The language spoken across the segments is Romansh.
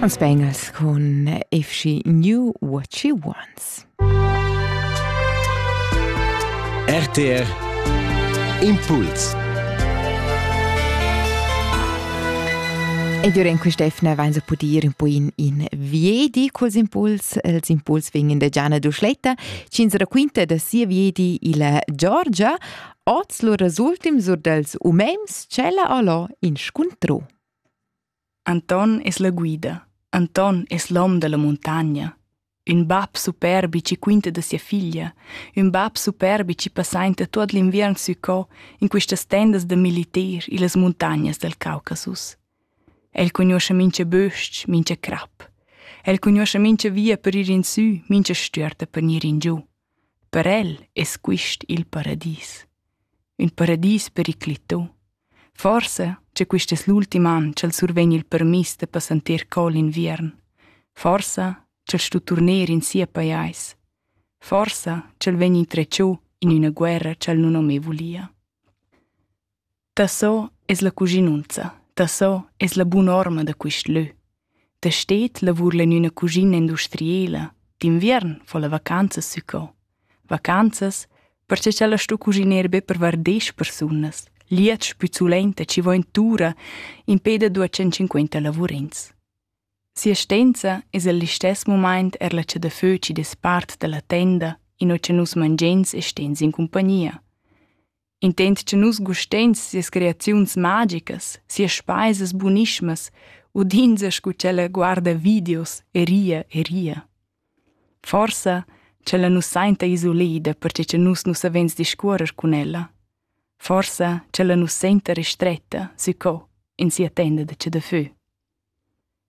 Ons Bengals con Efshi New What She Wants. RTR Impuls Ed io in quest'efna vain se pudir un po in, in viedi culs impuls, els impuls vegin de Gianna Duschletta, cins raquinta da sia viedi illa Georgia, Oz lur resultim sur dels umens tschella allò in scuntro. Anton es la guida. Anton es l'hom della montagna. Ün bab superbi ci quinta da sia figlia, ün bab superbi ci passainta tuot l'inviern sü co in quistas tendas da militer illas muntagnas del Caucasus. El cugnuoscha mincha bösch, mincha crap. El cugnuoscha mincha via per ir in sü, mincha stüerta per gnir in giù. Per el es quist il paradis. Ün paradis periclità. Forsa cha quist es l'ultim an cha'l survegn il permiss da passanter cò l'inviern. Forsa ch'el sto turner in sia pajais. Forsa ch'el vegn intretschô in üna guerra cha'l nun ho mê vulia. Daco es la cuschinunza? Daco es la bun'orma da quist lö? Da sted lavurla in üna cuschina industriela, d'inviern fo la vacanzas sü co. Vacanzas, perche cha la stu cuschiner be per var desch persunas, liats pü sulenta chi vo in tura impè da duos centcinquenta lavurins. Si'astenza es al listess mumaint er la cha da fö chi dess part da la tenda, inò cha nus mangiens e stens in cumpagnia. Intent che nus gusteins sias creaziuns magicas, sias speisas bunismas, udinza scu ch'ella guarda videos e ria e ria. Forsa ch'ella nus sainta isolida perche che nus nu savens discuorrer cun ella. Forsa ch'ella nus senta restretta sü co in sia tenda da chadafö.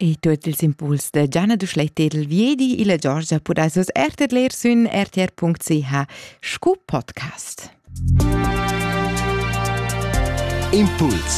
E tuot ils impuls da Gianna Duschlay Tedel viedi illa Giorgia pudais vus er tedler sün rtr.ch scu podcast. Impuls